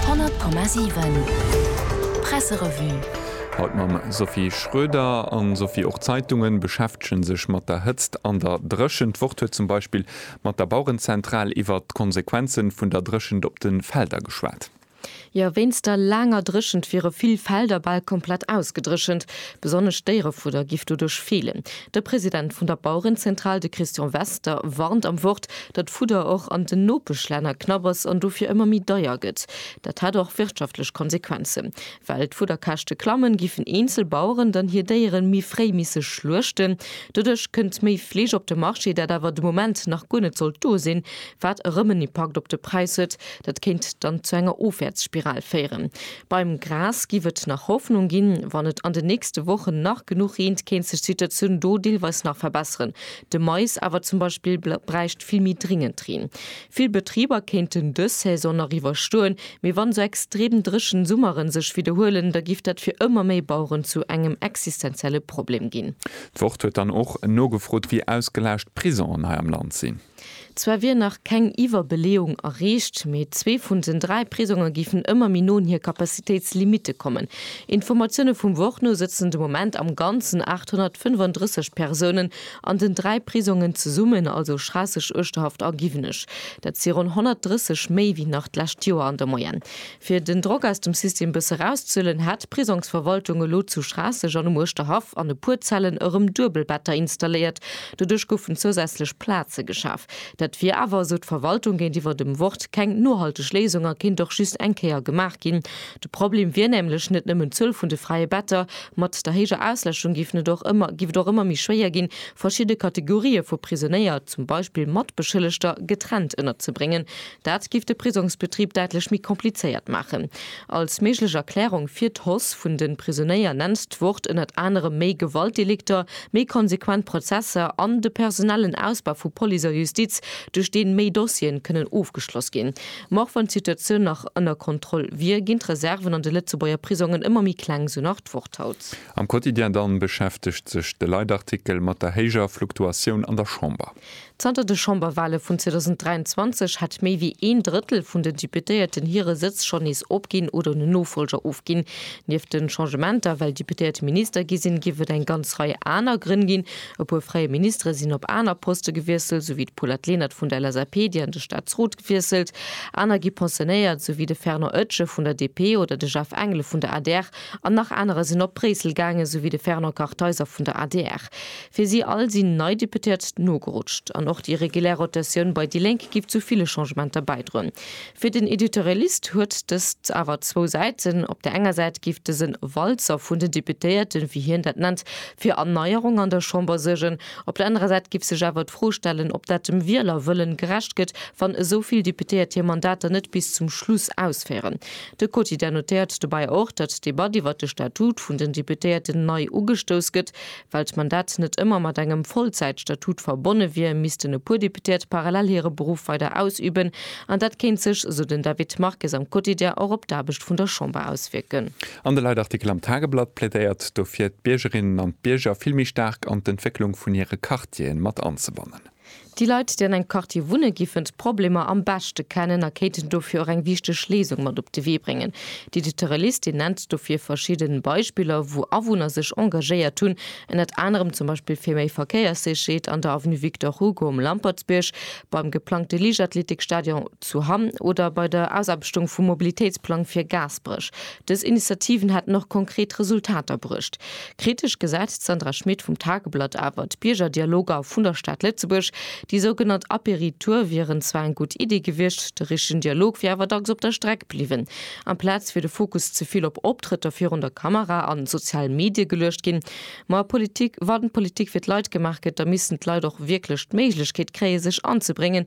100,7 Presserevue. Haut mam Sophie Schroeder. An Sophie, och d'Zeitungen beschäftegen sech mat der Hëtzt an der Dréchent. D'Wort huet zum Beispill mat der Bauerenzentral iwwert d'Konsequenzen vun der Dréchent op den Felder geschwat. Jo, wéinst der laanger Dréchent wiere vill Felder bal komplett ausgedréchent. Besonnesch d'Déierefudder giff doduerch feelen. De President vun der Bauerenzentral, de Christian Wester, warnt am Wort, datt d'Fudder och an den Nopeschlänner knapp ass an dofir ëmmer méi deier gëtt. Dat hätt och wirtschaftlech Konsequenzen. Well d'Fudderkäschte klammen, giffen eenzel Baueren dann hir Déieren méi fréi misse schluechten. Doduerch kënnt méi Fleesch op de Marché, dat awer de Moment nach guer net sollt do sinn, wat erëm en Impakt op de Präis huet. Dat kéint dann zu enger Ofwäertsspiral féieren. Beim Gras giff et nach Hoffnung ginn. Wann et an den nächste Wochen nach genuch reent, kéint sech d'Situatioun do deelweis nach verbesseren, De Mais awer zum Beispill bräicht vill méi dringend Reen. Vill Betriber kéinten dës Saison nach iwwerstoen, mee wann esou extrem dréchen Summeren sech widderhuelen, da giff dat fir ëmmer méi Baueren zu engem existenzielle Problem ginn. D'Wort huet dann och nogefrot, wéi ausgelaascht d'Prisongen hei am Land sinn. Zwar wier nach keng Iwwerbeleeung erreecht, mee zwee vun den dräi Prisonge géifen ëmmer méi no un hir Capacitéitslimitte kommen. Informatioune vum Wort no sëtzen de Moment am Ganzen 835 Persounen an den dräi Prisongen zesummen, also Schraasseg, Uerschterhaft a Giwenech. Dat si ronn 130 méi wéi nach d'lescht Joer an der Moyenne. Fir den Drock aus dem System bësse rauszehuelen, hat d'Prisongsverwaltung elo zu Schraasseg an um Uerschterhaff an e puer Zellen erëm Duebelbetter installéiert. Doduerch goufen zousätzlech Plaze geschaf. Dat wier awer, esou d'Verwaltung géintiwwer dem Wort, keng nohalteg Léisung a kéint och just eng Kéier gemaach ginn. De Problem wier nämlech net nëmmen d'Zuel vun de fräie Better. Mat der héijer Ausläschung géif et och ëmmer méi schwéier ginn, verschidde Kategorië vu Prisonéier, zum Beispill Matbeschëllegter, getrennt ënnerzebréngen. Dat giff de Prisongsbetrib däitlech méi komplizéiert maachen. Als méiglech Erklärung fir d'Hoss vun den Prisonéier nennt d'Wort ënnert anerem méi Gewaltdelikter, méi konsequent Prozesser an de personellen Ausbau vu Police a Justiz, duerch deen méi Dossieren kënnen ofgeschloss ginn. Ma och wann d'Situatioun nach ënner Kontroll wier, ginn d'Reserven an de Lëtzebuerger Prisongen ëmmer méi kleng, sou nach d'Wort haut. Am Quotidien dann beschäftegt sech de Leitartikel mat der héijer Fluktuatioun an der Chamber. Zanter de Chamberwale vun 2023 hat méi wéi een Drëttel vun den Deputéierten hire Sëtz schonn nees opginn oder en Nofolger ofginn. Nieft de Changementer, well Deputéiert Minister gi sinn, géif et eng ganz Rei aner Grënn ginn. E puer fräie Ministere sinn op aner Poste gewiesselt, sou wéi d'Paulette Lenert vun der LSAP, déi an de Staatsrot gewiesselt. Aner gi pensionéiert, sou wéi de Fernand Oetsche vun der DP oder de Jeff Engel vun der adr. An nach anerer sinn op Bréissel gaangen, sou wéi de Fernand Kartheiser vun der adr. Fir si all sinn nei Deputéiert nogerutscht. An och déi regulär Rotatioun bei déi Lénk giff zu ville Changementer bäidroen. Fir den Editorialist huet dëst awer zwou Säiten, Op der enger Säit giff dësen Walzer vun den Deputéierten, wéi hien dat nennt, fir Erneierung an der Chamber suergen. Op der anerer Säit giff sech awer d'Fro stellen, ob dat dem Wielerwëllen gerecht gëtt, wann esou vill Deputéiert hir Mandater net bis zum Schluss ausféieren. De Quotidien notéiert dobäi och, datt d'Debatt iwwer de Statut vun den Deputéierten nei ugestouss gëtt. Well d'Mandat net ëmmer mat engem Vollzäitstatut verbonne wier, missten e puer Deputéiert parallel hire Beruff weider ausüben. An dat kéint sech, esou den David Marques am Quotidien, och op d'Aarbecht vun der Chamber auswierken. An de Leitartikel am Tageblatt plädéiert dofir, d'Biergerinnen an d'Bierger vill méi staark an d'Entwécklung vun hire Quartieren mat anzebannen. Déi Leit, déi an engem Quartier wunne giffen d'Problemer am beschte kennen a kéinten dofir och eng wichteg Léisung mat op de Wee bréngen. Déi dotere Liste nennt dofir verschidden Beispiller, wou Awunner sech engagéiert hunn, ënnert anerem zum Beispill fir méi Verkéierssécherheet an der Avenue Victor Hugo um Lampertsbierg, beim geplangte Liichtathletikstadion zu Hamm oder bei der Ausaarbechtung vum Mobilitéitsplang fir Gaasperech. Dës Initiativen hätten och konkret Resultater bruecht. Kritesch gesäit d'Sandra Schmit vum Tageblatt awer d'Biergerdialoger vun der Stad Lëtzebuerg. Déi sougenannt Apéri-Tour wieren zwar eng gutt Iddi gewiescht, de richtegen Dialog wier awer dacks op der Streck bliwwen. Amplaz wier de Fokus ze vill op Optrëtter virun der Kamera an sozialen Medie geluecht ginn. Ma Politik, wann Politik fir d'Leit gemaach gëtt, da missten d'Leit och wierklech d'Méiglechkeet kréie sech anzebréngen,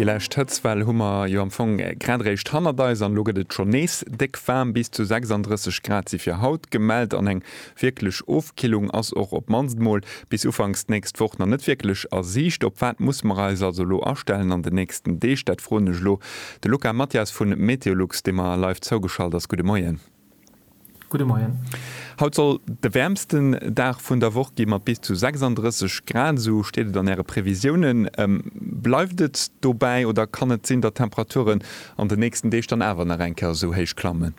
Déi lescht Hëtztwell hu mer jo am Fong grad eréischt hannert eis an elo gëtt et schonn nees déck waarm. Bis zu 36 Grad si fir haut gemellt an eng wierklech Ofkillung ass och op d'mannst mol bis ufanks d'nächst Woch nach net wierklech a Siicht. Op wat musse mer eis also elo astellen an den nächsten Deeg? Dat froen ech elo de Luca Mathias vu Meteolux, dee mer live zougeschalt ass. Gudde Moien. Gudde Moien. Haut soll de wäermsten Dag vun der Woch gi mat bis zu 36 Grad, esou steet et an Äre Previsiounen. Bleift et dobäi oder kann et sinn, datt d'Temperaturen an de nächsten Deeg dann awer nach eng Kéier esou héich klammen?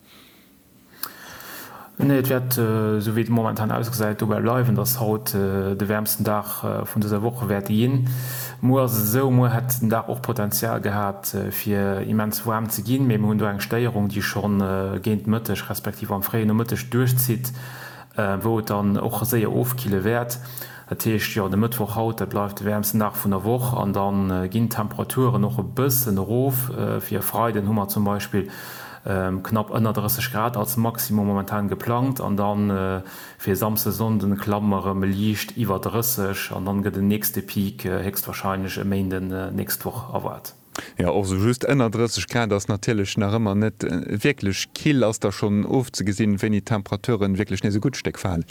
Nee, et wäert, esou wéi et momentan ausgesäit, dobäi bleiwen, datt haut de wäermsten Dag vun dëser Woch wäerte ginn. Muer ass et esou, muer hätt den Dag och Potenzial gehat fir immens waarm ze ginn, mee mir hunn do eng Stéierung, déi schonn géint Mëtteg respektiv am fréie Nomëtteg duerchzitt, wou et dann och séier ofkille wäert. Dat heescht, jo, de Mëttwoch haut, dat bleift de wäermsten Dag vun der Woch an da ginn d'Temperaturen och e bëssen erof. Fir e Freiden hu mer zum Beispill knapp ënner 30 Grad als Maximum momentan geplangt an da Fir Samsde, Sonnden klammen erëm liicht iwwer 30 an dann gëtt en nächste Peak héchstwahrscheinlech e Méinden nächst Woch erwaart. Jo, och sou just ënner 30 Grad ass natierlech nach ëmmer net wierklech kill. Ass da schonn ofzegesinn, wéini d'Temperaturen wierklech nees e gutt Stéck falen?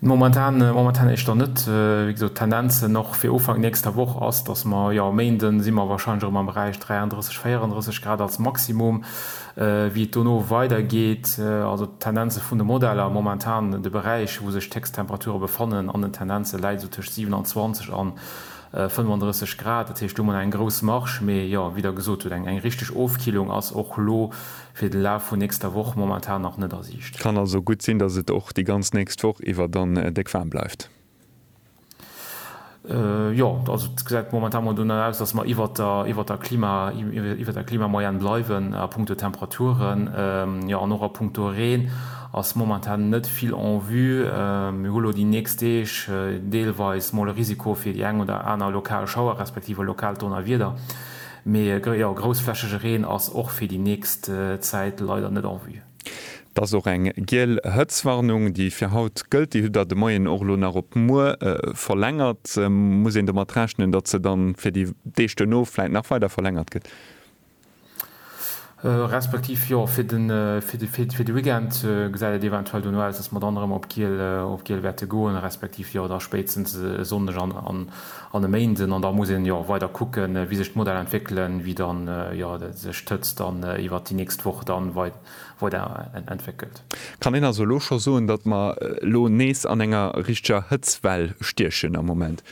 Momentan, momentan éischter net. Wéi gesot, d'Tendenzen och fir Ufank nächster Woch ass, dass mer, jo, Méinden si mer wahrscheinlech erëm am Beräich 33, 34 Grad als Maximum. Wéi et dono weider geet, also d'Tendenze vun de Modeller, momentan de Beräich, wou sech d'Héchsttemperature befannen an den Tendenze läit esou tëscht 27 an 35 Grad. Dat heescht, do huet een eng grouss Marge. Mee jo, wéi Der gesot hutt, eng richteg Ofkillung ass och elo fir de Laf vun nächster Woch momentan nach net a Siicht. Kann also gutt sinn, dass et och déi ganz nächst Woch iwwer dann déck waarm bleift. Jo, also et gesäit momentan mol dono aus, datt mer iwwert der, iwwert der Klima, iwwert der Klimamoyenne bleiwen a punkto Temperaturen. Jo, an och a punkto Reen ass momentan net vill en vue. Mir hu lo déi nächst Deeg deelweis mol e Risiko fir déi eng oder aner lokal Schauer respektiv e lokaalt Donnerwieder, mee jo, groussflächege Reen ass och fir déi nächst Zäit leider net en vue. Et ass och eng giel Hëtzwarnung, déi fir haut gëllt. Déi hutt Der de Moien och elo nach op muer verlängert. Muss een domat rechnen, datt se da fir déi Deeg duerno vläit nach weider verlängert gëtt? Respektiv, jo, fir de Weekend gesäit et eventuell duerno aus, datt mer dann erëm op giel wäerte goen, respektiv, jo, da spéitstens e Sonndeg an. an e Méinden, an da muss een jo weider kucken, wéi sech d'Modell entwéckelen, wéi dann jo sech d'Hëtzt dann iwwert déi nächst Woch dann weider entwéckelt. Kann een also elo scho soen, datt mer elo nees an enger richteger Hëtztwell stiechen am Moment?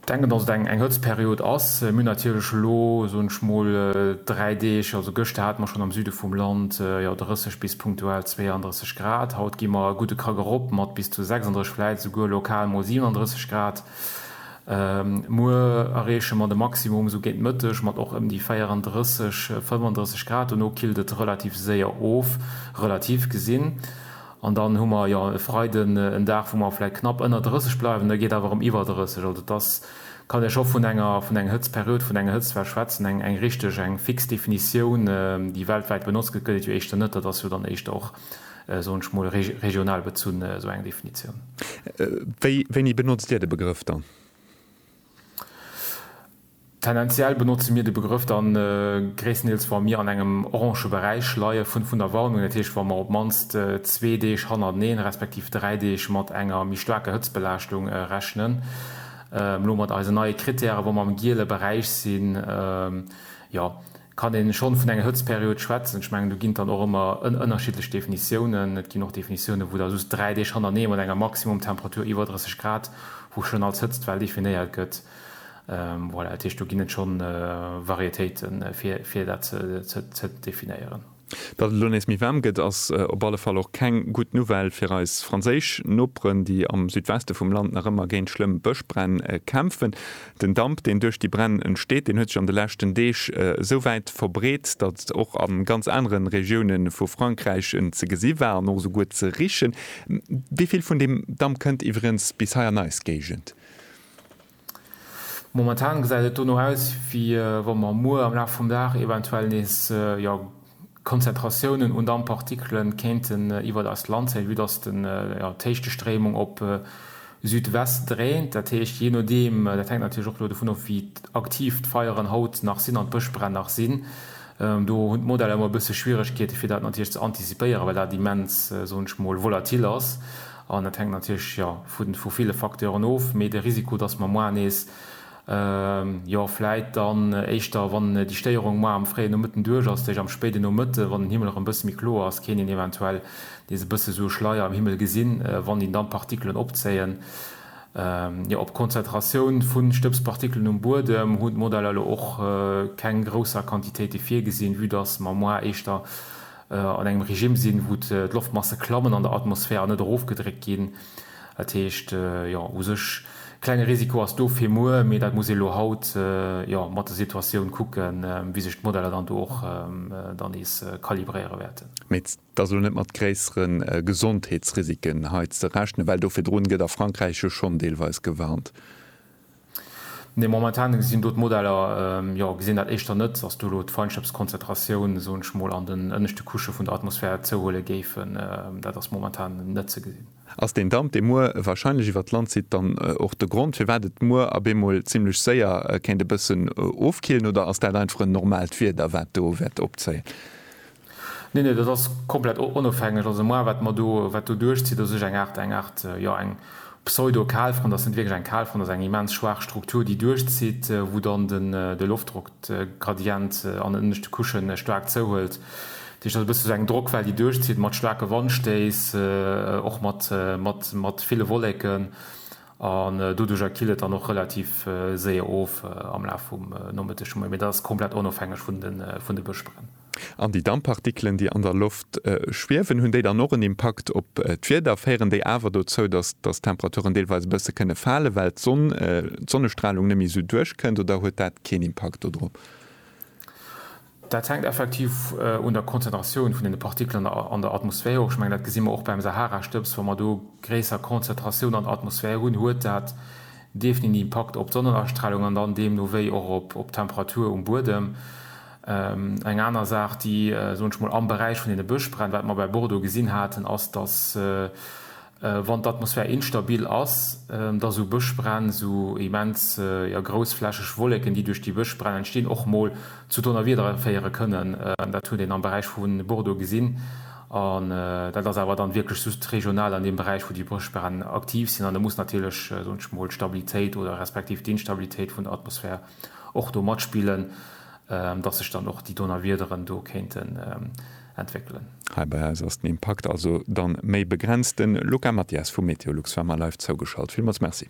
Ech denken, datt et eng Hëtztperiod ass. Mir hunn natierlech elo, soen ech mol, dräi Deeg, also gëschter hate mer schonn am Süde vum Land jo 30 bis punktuell 32. 30 Grad. Haut gi mer e gudde Krack erop mat bis zu 36, vläit esouguer lokal mol 37 Grad. Muer erreeche mer de Maximum esou géint Mëtteg mat och ëm déi 34, 35 Grad. Dono killt et relativ séier of, relativ gesinn. An dann hu mer, jo, e Freiden en Dag, wou mer vläit knapp ënner 30 bleiwen, da geet awer erëm iwwer 30. Also et ass. Kann ech och vun enger, vun eng Hëtztperiod, vun enger Hëtztwell schwätzen. Eng, eng richteg, eng fix Definitioun, déi weltwäit benotzt gëtt, gëtt et jo éischter net. Dat ass jo dann éischter och, soen ech mol, re, regional bezunn, esou eng Definitioun. Wéi, wéini benotzt Dir de Begrëff dann? Tendenziell benotze mir de Begrëff dann gréisstendeels, wa mir an engem orange Beräich leie vun, vun der Warnung. Dat heescht, wa mer op d'mannst zwee Deeg hannerteneen, respektiv dräi Deeg mat enger méi staarker Hëtztbelaaschtung rechnen. Elo mat eisen neie Krittäre wou mer am giele Beräich sinn, jo, kann ee schonn vun enger Hëtzperiod schwätzen. Ech mengen do ginn et dann och ëmmer ënnerschiddlech Definitiounen. Et ginn och Definitiounen wou da just dräi Deeg hannerneeë mat enger Maximumtemperatur iwwer 30 Grad, wou schonn als Hëtztwell definéiert gëtt. Voilà, dat heescht do ginn et schonn Varietéiten fir dat ze definéieren. Datt et elo nees méi waarm gëtt, ass op alle Fall och keng gutt Nouvelle fir eis franséisch Noperen, déi am Südweste vum Land nach ëmmer géint schlëmm Bëschbränn kämpfen. Den Damp, deen duerch déi Bränn entsteet, deen huet sech an de leschten Deeg esou wäit verbreet, datt et och a ganz anere Regioune vu Frankräich ze gesi war an och esouguer ze richen. Wéi vill vun deem Damp kënnt iwwerens bis hei an eis Géigend? Momentan gesäit et dono aus, wéi wa mer muer am Laf vum Dag eventuell nees Konzentratiounen un Damppartikele kéinten iwwert eist Land zéien, vue dass d'Héichtestrëmung op Südwest dréint. Dat heescht, jee nodeem, dat hänkt natierlech och elo dovun of, wéi aktiv d'Feieren haut nach sinn an d'Bëschbränn nach sinn, do hunn d'Modeller ëmmer e bësse Schwieregkeete fir dat natierlech ze antizipéieren, well dat immens, soen ech mol, volatil ass. An dat hänkt natierlech, jo, vu ville Facteuren of, mee de Risiko, dass mer moar nees, jo, vläit dann éischter, wann déi Stéierung moar am fréien Nomëtten duerch ass, tëscht am spéiden Nomëtte, wann den Himmel erëm e bësse méi kloer ass, kéint een eventuell nees e bësse sou e Schleier am Himmel gesinn, wann een dann d'Partikelen opzéien. Jo, op d'Konzentratioun vu Stëbspartikelen um Buedem hunn d'Modeller elo och keng grousser Quantitéite virgesinn, vue dass mer moar éischter, an engem Regime sinn, wou d'Loftmasse klammen an der Atmosphär an net erofgedréckt ginn. Dat heescht, jo, u sech e klenge Risiko ass do fir muer, mee dat muss ee elo haut, jo, mat der Situatioun kucken, wéi sech d'Modeller dann do och dann nees kalibréiere wäerten. Mee et ass elo net mat gréissere Gesondheetsrisiken hei ze rechnen, well do virdrun gëtt a Frankräich jo schonn deelweis gewarnt. Nee, momentan gesinn do d'Modeller, jo, gesinn dat éischter net, dass do elo d'Feinschëpskonzentratioun, soen ech mol, an den ënneschte Couchë vun der Atmosphär zouhuele géifen. Dat ass momentan net ze gesinn. Ass deen Damp, dee muer warscheinlech iwwert d'Land zitt, dann och de Grond, firwat et muer a bemol zimmlech séier kéint e bëssen ofkillen, oder ass dat einfach en normaalt Wieder, wat do wäert opzéien? Nee, nee, dat ass komplett onofhängeg. Also moi, wat mer do, wat do duerchzitt, ass ech eng Aart, eng Aart, jo, eng Pseudo-Kalfront. Ass net wierklech eng Kalfront, ass eng immens schwaach Struktur, déi duerchzitt, wou dann den, de Loftdrock, de Gradient an den ënneschte Couche staark zouhuelt. Dat heescht, dat ass e bësse sou eng Drockwell, déi duerchzitt, mat staarke Wandstéiss, och mat, mat, mat ville Wolleken. An doduerjer killt et dann och relativ séier of am Laf vum Nomëtteg, vum Moie. Mee dat ass komplett onofhängeg vun de, vun de Bëschbränn. An déi Damppartikelen, déi an der Loft schwiewen, hunn déi dann och en Impakt op d'Wieder? Féieren déi awer dozou, datt d'Temperaturen deelweis e bësse kënne falen, well d'Sonn, d'Sonnestralung net méi esou duerchkënnt, oder huet dat keen Impakt dodrop? Dat hänkt effektiv un der Konzentratioun vun deene Partikelen an der Atmosphär of. Ech mengen, dat gesi mer och beim Saharastëbs. Wa mer do gréisser Konzentratioun an der Atmosphär hunn, huet dat definit en Impakt op d'Sonnenastralung an dann deemno wéi och op d'Temperatur um Buedem. Eng aner Saach, déi, soen ech mol, am Beräich vun deene Bëschbränn, wat mer bei Bordeaux gesinn haten, ass, dass, wann d'Atmosphär instabil ass, dass esou Bëschbränn, esou immens, jo, groussflächeg Wolleken, déi duerch déi Bëschbränn entstinn, och mol zu Donnerwiedere féiere kënnen. Dat huet een am Beräich vu Bordeaux gesinn. An dat ass awer dann wierklech just regional an deem Beräich, wou déi Bëschbränn aktiv sinn. An do muss natierlech, soen ech mol, d'Stabilitéit oder respektiv d'Instabilitéit vun der Atmosphär och do matspillen, dass sech dann och déi Donnerwiederen do kéinten entwéckelen. Hei bei eis ass den Impakt also dann méi begrenzt. Den Luca Mathias vum Meteolux war mer live zougeschalt. Villmols Merci.